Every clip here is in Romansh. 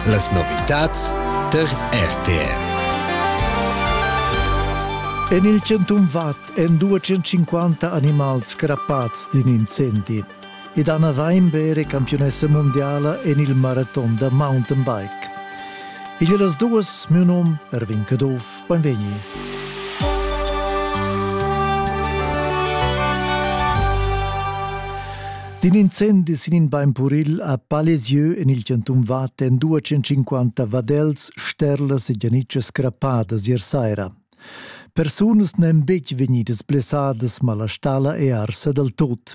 Las novitads tar RTR. En il Centum Vad èn 250 animals crappads d'in incendi. Ed Anna Weinberg è campionessa mondiala en il maraton da mountainbike. Igl è las duas, mio num Erwin Caduff. Beinvegni. D'in incendi sin in bain puril a Palesieu en il chantun Vatten 250 vadels, sterlas e gianitschas crappadas ier saira. Persunas n'èn betg vegnidas blessadas, ma la stala è arsa dal tut.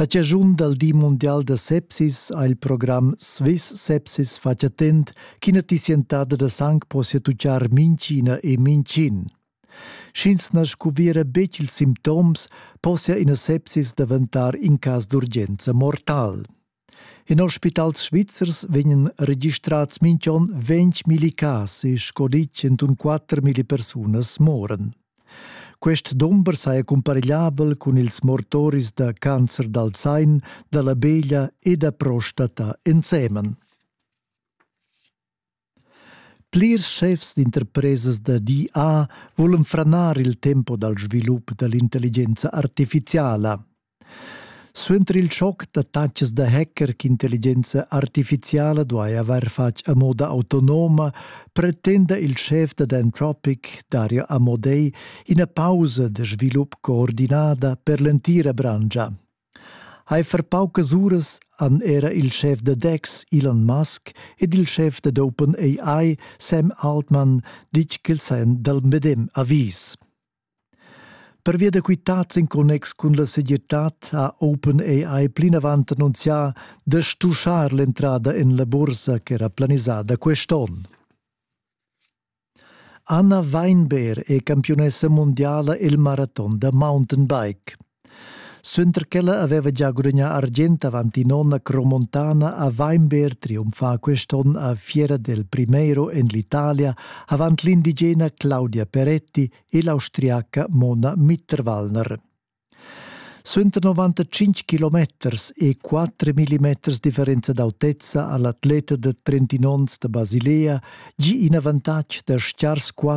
A chaschun dal di mundial da sepsis ha il program Swiss Sepsis fatg attent ch'ina tissientada da sang possia tutgar minchina e mincin. Sch'ins na scuviera betg ils simptoms, possia ina sepsis daventar in cas d'urgenza mortal. In ospitals svizzers vegnan registrats minch'on ventg milli cas e sco dit 104 milli persunas moran. Quest dumber saja cumparegliabel cun ils mortoris da cancer dal zain, da la beglia e da prostata ensemen. Plirs schefs d'interpresas da DA vulan franar il tempo dal svilup da l'intelligenza artificiala. Suenter il schoc da taxas da hacker ch'intelligenza artificiala duai avair fatg a moda autonoma, pretenda il schef da Anthropic, Dario Amodei, ina pausa da svilup coordinada per l'entira branscha. Heifer paucas uras han era il schef da Dex Elon Musk ed il schef dad OpenAI Sam Altman ditg ch'els hajan dal medem avis. Pervia da quitads en connex cun la segirtad ha OpenAI plinavant annunzià da stuschar l'entrada en la bursa ch'era planisada quest onn. Anna Weinberg è campiunessa mundiala il maraton da mountainbike. Suenter ch'ella aveva già gudagnà argient avanti nona cromontana ha Weinberg triumfà quest'onn a fiera del Primero en l'Italia avant l'indigena Claudia Peretti e l'austriaca Mona Mitterwallner. Suenter 95 kilometers e 4 millimeters differenza d'autezza ha l'atleta da 31 onns da Basilea gì in avantatg da schar squatter